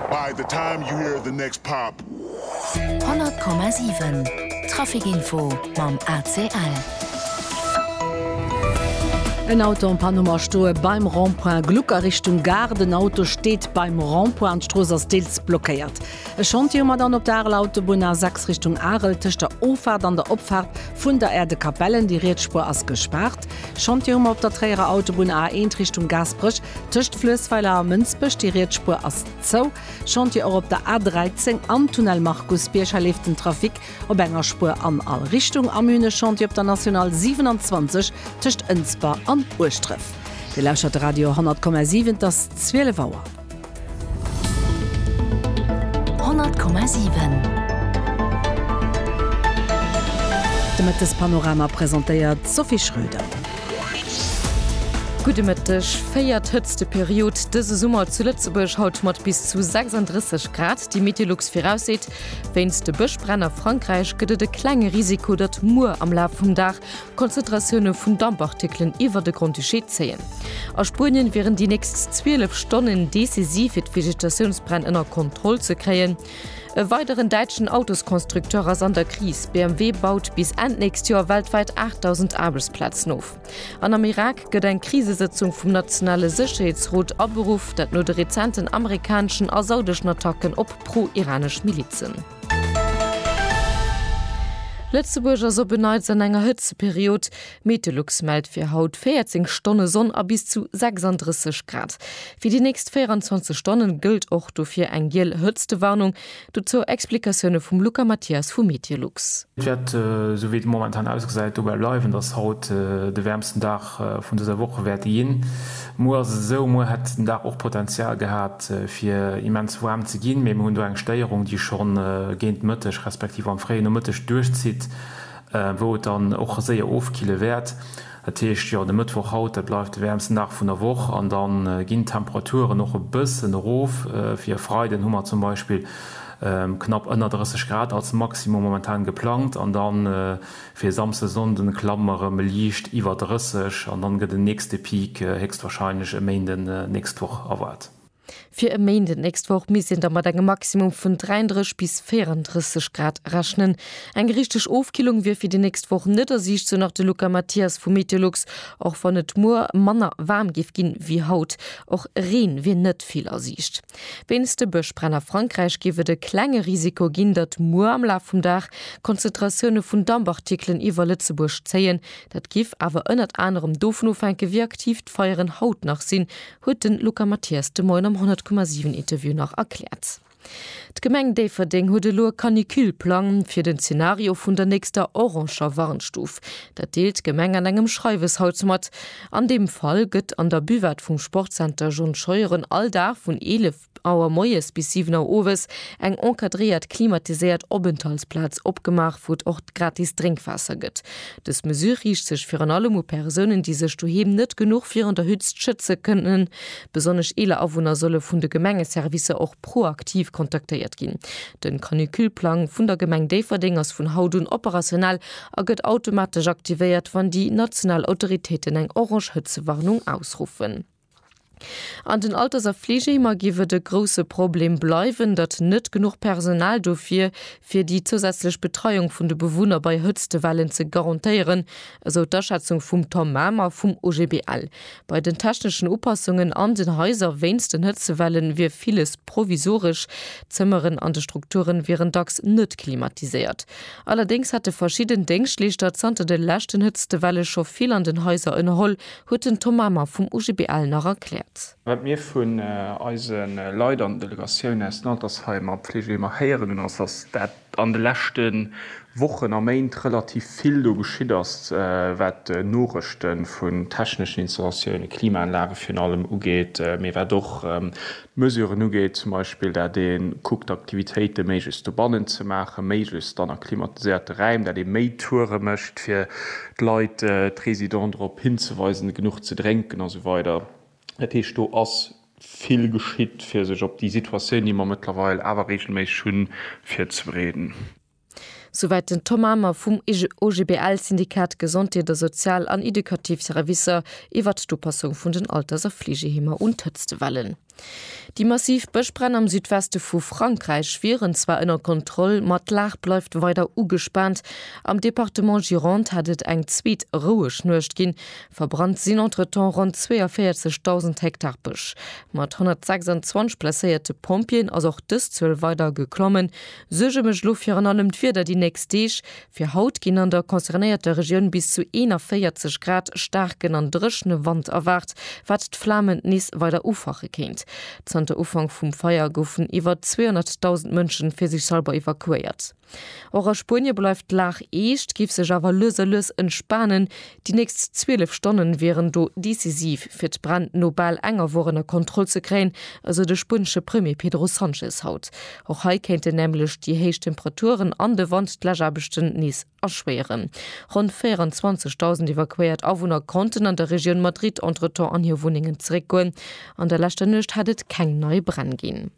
By the time you hear the next pop. 100,7 Traficinfo mam ACL. En Auto am Panoma stoe beim Rond-point Gluck a Richtung Gare. Den Auto steet beim Rond-point an d'Strooss ass deels blockéiert. E Chantier um Madan op der Areler Autobunn A 6 Richtung Arel tëscht der Offaart an der Opfaart vun der Aire de Capellen. Déi riets Spuer ass gespaart. Chantiere mer op der Tréierer Autobunn A 1 Richtung Gaasperech, tëscht Fluessweiler a Mënsbech, déi riets Spuer ass zou. Chantier och op der A 13 am Tunnel Markus Bierger leeft den Trafic op enger Spuer an all Richtung. Am Une Chantier op der National 27 tëscht Ënsber an Ueschdref. Dir lauschtert de Radio 100,7, et ass 12 Auer. 100,7 De Mëttespanorama presentéiert d'Sophie Schröder. Gudde Mëtteg. Véiert hëtzte Period dëse Summer zu Lëtzebuerg, haut mat bis zu 36 Grad. Déi Meteolux virausseet, wéinst de Bëschbränn a Frankräich gëtt et e klenge Risiko, datt muer am Laf vum Dag Konzentratioune vun Dampartikelen iwwer de Grand-Duché zéien. A Spuenien wieren déi nächst 12 Stonnen decisiv fir d'Vegetatiounsbränn ënner Kontroll ze kréien. E weideren däitschen Autosconstructeur ass an der Kris. BMW baut bis Enn d'nächst Joer weltwäit 8.000 Aarbechtsplazen of. An am Irak gëtt eng Krisesëtzung vum nationale Sécherheetsrot aberuff, dat no de rezenten amerikaneschen a saudeschen Attacken op pro-iranesch Milizen. Lëtzebuerg ass op en Neits an enger Hëtzeperiod. Meteolux mellt fir haut 14 Stonne Sonn a bis zu 36 Grad. Fir déi nächst 24 Stonne gëllt och dofir eng giel Hëtztewarnung. Dozou Explikatioune vum Luca Mathias vu Meteolux. Et wäert, esou wéi et momentan ausgesäit, dobäi bleiwen, datt haut de wäermsten Dag vun dëser Woch wäerte ginn. Muer ass et esou, muer hätt den Dag och Potenzial gehat fir immens waarm ze ginn, mee mir hunn do eng Stéierung, déi schonn géint Mëtteg respektiv am fréie Nomëtteg duerchzitt, wou et dann och séier ofkille wäert. Dat heescht, jo, de Mëttwoch haut, dat bleift de wäermsten Dag vun der Woch an da ginn d'Temperaturen och e bëssen erof. Fir e Freiden hu mer zum Beispill knapp ënner 30 Grad als Maximum momentan geplangt an dann, Fir Samsde, Sonnden klammen erëm liicht iwwer 30 an dann gëtt en nächste Peak héchstwahrscheinlech e Méinden nächst Woch erwaart. Fir e Méinden nächst Woch misst een da mat engem Maximum vun 33 bis 34 Grad rechnen. Eng richteg Ofkillung wier fir déi nächst Woch net a Siicht, sou nach de Luca Mathias vu Meteolux. Och wann et muer manner waarm géif ginn ewéi haut, och Reen wier net vill a Siicht. Wéinst de Bëschbränn a Frankräich géif et e klenge Risiko ginn, datt muer am Laf vum Dag Konzentratioune vun Dampartikelen iwwer Lëtzebuerg zéien. Dat géif awer ënnert anerem dovun ofhänken, wéi aktiv d'Feieren haut nach sinn, huet de Luca Mathias de Moien am 100,7 Interview nach erkläert. D'Gemeng Déifferdeng huet elo e Canicule-Plang fir den Zenario vun der nächster oranger Warnstuf. Dat deelt d'Gemeng an engem Schreiwes haut mat. An deem Fall gëtt an der Buvette vum Sportzenter John Scheuren all Dag vun 11 Auer moies bis 7 Auer owes eng encadréiert klimatiséiert Openthaltsplaz opgemaach, wou et och gratis Drénkwaasser gëtt. Dës Mesure riicht sech virun allem u Persounen, déi sech doheem net genuch virun der Hützt schëtze kënnen. Besonnesch eeler Awunner solle vun de Gemengeservicer och proaktiv kontaktéiert ginn. De Canicule-Plang vun der Gemeng Déifferdeng ass vun haut un operationell a gëtt automatesch aktivéiert, wann déi national Autoritéiten eng orange Hëtzewarnung ausruffen. An den Alters a Fleegeheemer géif et e grousse Problem bleiwen, datt net genuch Personal do wier, fir déi zousätzlech Betreiung vun de Bewunner bei Hëtztewellen ze garantéieren, esou d'Aschätzung vum Tom Mamer vum OGBL. Bei den techneschen Upassungen an den Haiser wéinst den Hëtzewellen wier villes provisoresch. D'Zëmmeren an de Strukture wieren dacks net klimatiséiert. Allerdéngs hätte verschidden Déngschtleeschter zanter de leschten Hëtztewelle scho vill an den Haiser ënnerholl, huet den Tom Mamer vum OGBL nach erkläert. Wat mir vun eise Leit an Delegatioun aus den Altersheimer a Pflegeheemer héieren hunn, ass, datt dat an de leschte Wochen a Méint relativ vill do geschitt ass, wat Norechte vun techneschen Installatioune, Klimaanlage virun allem, ugeet, mee wat och Mesuren ugeet, zum Beispill dat ee kuckt Aktivitéite méiglechst dobannen ze maachen, méiglechst dann a klimatiséierte Räim, dat ee méi Toure mécht fir d'Leit, d'Résidenten drop hinzeweisen, genuch ze drénken a sou weider. Dat heescht do ass vill geschitt fir sech op déi Situatioun, déi mer mëttlerweil awer reegelméisseg hunn, virzebereeden. Souwäit den Tom Amer vum OGBL, Syndikat Gesondheet a Sozial an Edukativ Servicer, iwwert d'Upassung vun den Alters a Fleegeheemer un d'Hëtztewellen. Déi massiv Bëschbränn am Südweste vu Frankräich wieren zwar ënner Kontroll, ma d'Lag bleift weider ugespaant. Am Departement Gironde hat et eng zweet roueg Nuecht ginn. Verbrannt sinn entretemps ronn 42.000 Hektar Bësch. Mat 126 blesséierte Pompjeeën ass och dës Zuel weider geklommen. Suerge mécht elo virun allem d'Wieder déi nächst Deeg. Fir haut ginn an der concernéierter Regioun bis zu 41 Grad. Staarken an dréchne Wand erwaart, wat d'Flamen nees weider ufache kéint. Zanter Ufank vum Feier goufen iwwer 200.000 Mënschen fir sech selwer evakuéiert. Och a Spuenie bleift d'Lag eescht, géif sech awer lues a lues entspanen. Déi nächst 12 Stonne wieren do decisiv, fir d'Bränn no bal enger Woch ënner Kontroll ze kréien, esou de spuenesche Premier Pedro Sanchez haut. Och hei kéinten nämlech déi héich Temperaturen an de Wand d'Läschaarbechten nees erschwéieren. Ronn 24.000 evakuéiert Awunner konnten an der Regioun Madrid entretemps an hir Wunnengen zeréckgoen. An der leschter Nuecht hat et keng nei Bränn ginn.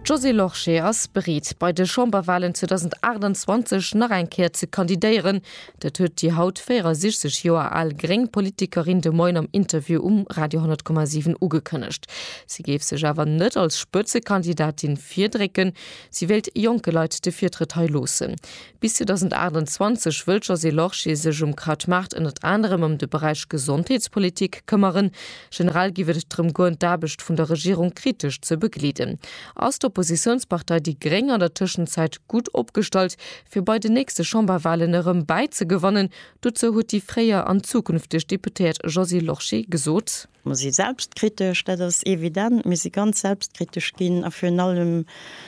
D'Josée Lorsché ass bereet, bei de Chamberwalen 2028 nach eng Kéier ze kandidéieren. Dat huet déi haut 64 Joer al gréng Politikerin de Moien am Interview um Radio 10,7 ugekënnegt. Si géif sech awer net als Spëtzekandidatin virdrécken. Si wéilt jonke Leit de Virtrëtt hei loossen. Bis 2028 wëll d'Josée Lorsché sech um Kraut Maart ënnert anerem ëm de Beräich Gesondheetspolitik këmmeren. Generell giff et drëm goen, d'Aarbecht vun der Regierung kritesch ze begleeden. Ass d'Oppositiounspartei déi gréng an der Tëschenzäit gutt opgestallt, fir bei den nächste Chamberwalen erëm bäizegewannen? Dozou huet déi fréier an zukünfteg Deputéiert Josée Lorsché gesot. Mer si selbstkritesch, dat ass evident. Mir si ganz selbstkritesch ginn a virun allem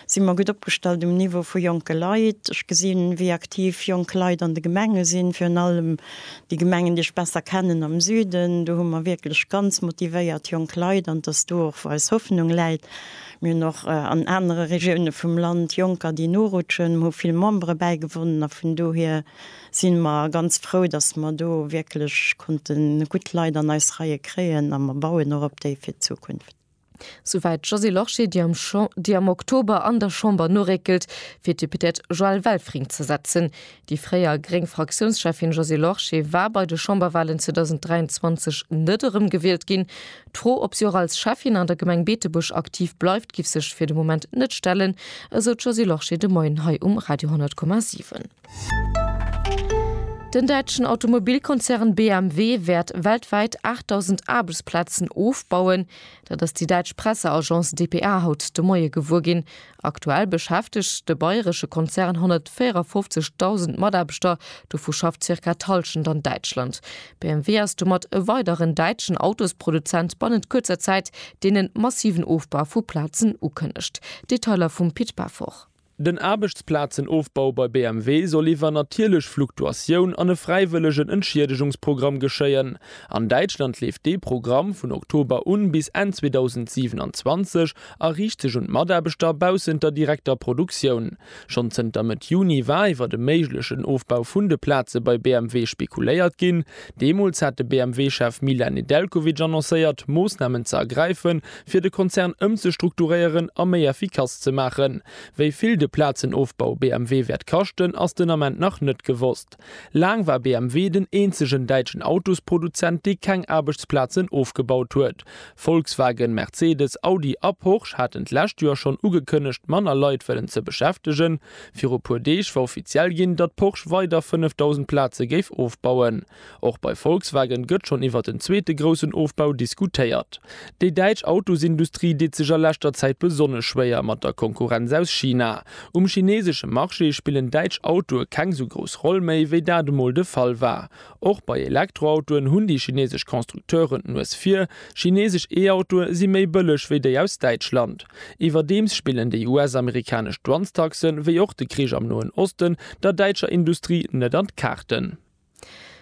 si mer gutt opgestallt um Niveau vu jonke Leit. Ech gesinn, wéi aktiv jonk Leit an de Gemenge sinn, virun allem déi Gemengen, déi ech besser kennen am Süden. Do hu mer wierklech ganz motivéiert jonk Leit an 't ass do och, wou eis Hoffnung läit. Mir hunn och an anere Regioune vum Land Jonker, déi norutschen. Mer hu vill Membere bäigewonnen a vun dohier, sinn mer ganz frou, dass mer do wierklech konnten gutt Leit an eis Reie kréien a mer bauen och op déi fir d'Zukunft. Souwäit d'Josée Lorsché, déi am Oktober an der Chamber noréckelt, fir d'Députéiert Joëlle Welfring ze ersetzen. Déi fréier gréng Fraktiounscheffin Josée Lorsché war bei de Chamberwalen 2023 net erëm gewielt ginn. D'Fro, ob si och als Schäffin an der Gemeng Beetebuerg aktiv bleift, giff sech fir de Moment net stellen, esou d'Josée Lorsché de Moien hei um Radio 10,7. Den däitschen Automobilkonzern BMW wäert weltwäit 8.000 Aarbechtsplazen ofbauen. Dat ass déi däitsch Presseagence dpa haut de Moie gewuer ginn. Aktuell beschäftegt de bayresche Konzern 154.000 Mataarbechter, dovu schafft zirka d'Hallschent an Däitschland. BMW ass domat e weideren däitschen Autosproduzent bannent kuerzer Zäit, deen e massiven Ofbau vu Plazen ukënnegt. Detailer vum Pit Pefort. Den Aarbechtsplazenofbau bei BMW soll iwwer natierlech Fluktuatioun an e fräiwëllegen Entschiedegungsprogramm geschéien. An Däitschland leeft dee Programm vun Oktober un bis Enn 2027 a riicht sech un d'Mataarbechter baussent der direkter Produktioun. Schonn zënter Mëtt Juni war iwwer e méiglechen Ofbau vun de Plaze bei BMW spekuléiert ginn. Deemools hat de BMW-Chef Milan Nedeljkovic annoncéiert, Moossnamen ze ergräifen, fir de Konzern ëmzestrukturéieren a méi effikass ze maachen. Wéi vill de Plazenofbau BMW wäert kaschten, ass den Ament nach net gewosst. Laang war BMW den eenzegen däitschen Autosproduzent, dee keng Aarbechtsplazen ofgebaut huet. Volkswagen, Mercedes, Audi a Porsche haten d'lescht Joer schonn ugekënnegt, manner Leit wëllen ze beschäftegen. Viru puer Deeg war offiziell ginn, datt Porsche weider 5.000 Plaze géif ofbauen. Och bei Volkswagen gëtt schonn iwwert en zweete groussen Ofbau diskutéiert. Déi däitsch Autosindustrie deet sech a leschter Zäit besonnesch schwéier mat der Konkurrenz aus China. Um chineesesche Marché spillen däitsch Autoe keng esou grouss Roll méi, wéi dat emol de Fall war. Och bei Elektroautoen hunn déi chineesesch Constructeuren d'Nues vir. Chineesesch E-Autoe si méi bëlleg wéi déi aus Däitschland. Iwwerdeems spillen déi US-amerikanesch Douanestaxe wéi och de Krich am Noen Osten der däitscher Industrie net an d'Kaarten.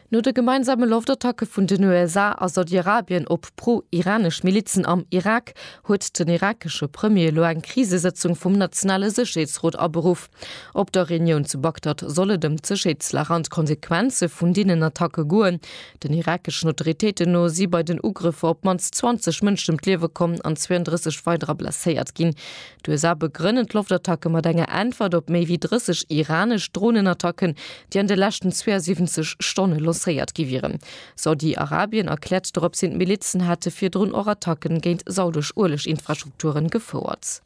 No de gemeinsame Loftattacke vun den USA a Saudiarabien op pro-iranesch Milizen am Irak huet den irakesche Premier elo eng Krisesëtzung vum nationale Sécherheetsrot aberuff. Op der Reunioun zu Bagdad soll et ëm d'Sécherheetslag an d'Konsequenze vun deenen Attacke goen. Den irakeschen Autoritéiten no si bei den Ugrëffer op d'mannst 20 Mënschen ëm d'Liewe komm an 32 weiderer blesséiert ginn. D'USA begrënnen d'Loftattacke mat enger Äntwert op méi wéi 30 iranesch Dronenattacken, déi an de leschten 72 Stonne lancéiert gi wieren. Saudi-Arabien erkläert doropshin, d'Milizen hätte virdrun och Attacke géint saudesch Ueleg-Infrastrukture gefouert.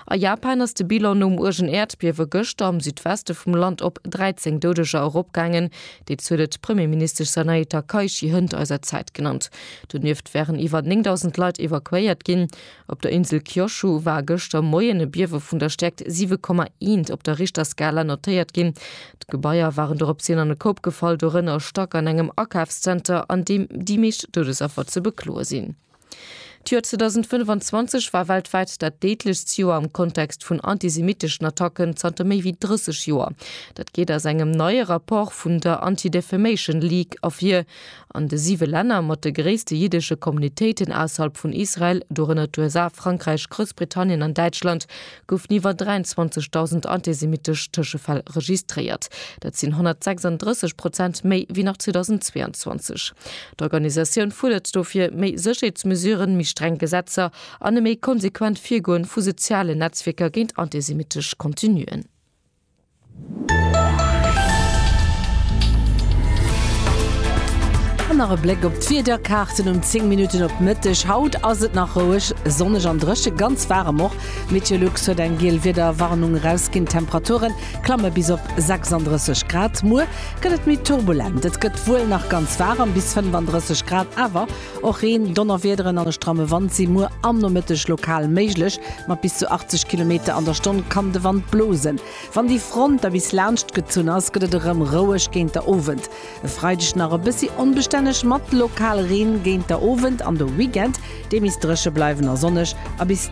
A Japan ass de Bilan nom uergen Äerdbiewe gëschter am Südweste vum Land op 13 Doudeger eropgaangen. Déi Zuel huet d'Premierministesch Sanae Takaichi hënt eiser Zäit genannt. Donieft wären iwwer 9.000 Leit evakuéiert ginn. Op der Insel Kyushu war gëschter Moien e Biewe vun der Stäerkt 7,1 op der Richterskala notéiert ginn. D'Gebaier waren doropshin an e Koup gefall, dorënner e Stack an engem Akafszenter, an deem déi meescht Doudesaffer ze bekloe sinn. D'Joer 2025 war weltwäit dat déidlechst Joer am Kontext vun antisemitteschen Attacken zanter méi wéi 30 Joer. Dat geet aus engem neie Rapport vun der Anti-Defamation League ervir. An de siwe Länner mat de gréisste jiddesche Communitéiten ausserhalb vun Israel, dorënner d'USA, Frankräich, Groussbritannien an Däitschland, goufen iwwer 23.000 antisemittesch Tëschefäll registréiert. Dat sinn 136 Prozent méi wéi nach 2022. D'Organisatioun fuerdert dofir méi Sécherheetsmesuren, méi streng Gesetzer an e méi konsequent Virgoen vu sozialen Netzwierker géint antisemittesch Contenuen. An nach e Bléck op d'Wiederkaarten um 10 Minutten op Mëtteg. Haut ass et nach roueg, sonneg an dréche, ganz waarem och. Meteolux huet eng giel Wiederwarnung erausginn. D'Temperature klamme bis op 36 Grad. Muer gëtt et méi turbulent, et gëtt wuel nach ganz waarem, bis 35 Grad, awer Och Reen, Donnerwiederen an e stramme Wand si muer am Nomëtteg lokal méiglech. Mat bis zu 80 Kilometer an der Stonn kann de Wand blosen. Wann déi Front da bis laanscht gezunn ass, gëtt et erëm roueg géint der Owend. E Freideg nach e bëssi onbestänneg mat lokal Reen géint der Owend an de Weekend, dee misst dréche bleiwen a sonneg a bis.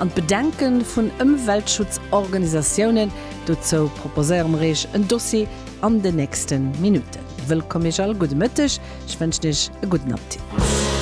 An d'Bedenke vun Ëmweltschutzorganisatiounen, dozou proposéiere mer Iech en Dossier an den nächste Minutten. Wëllkomm Iech all, gudde Mëtteg, ech wënschen Iech e gudden Apptit.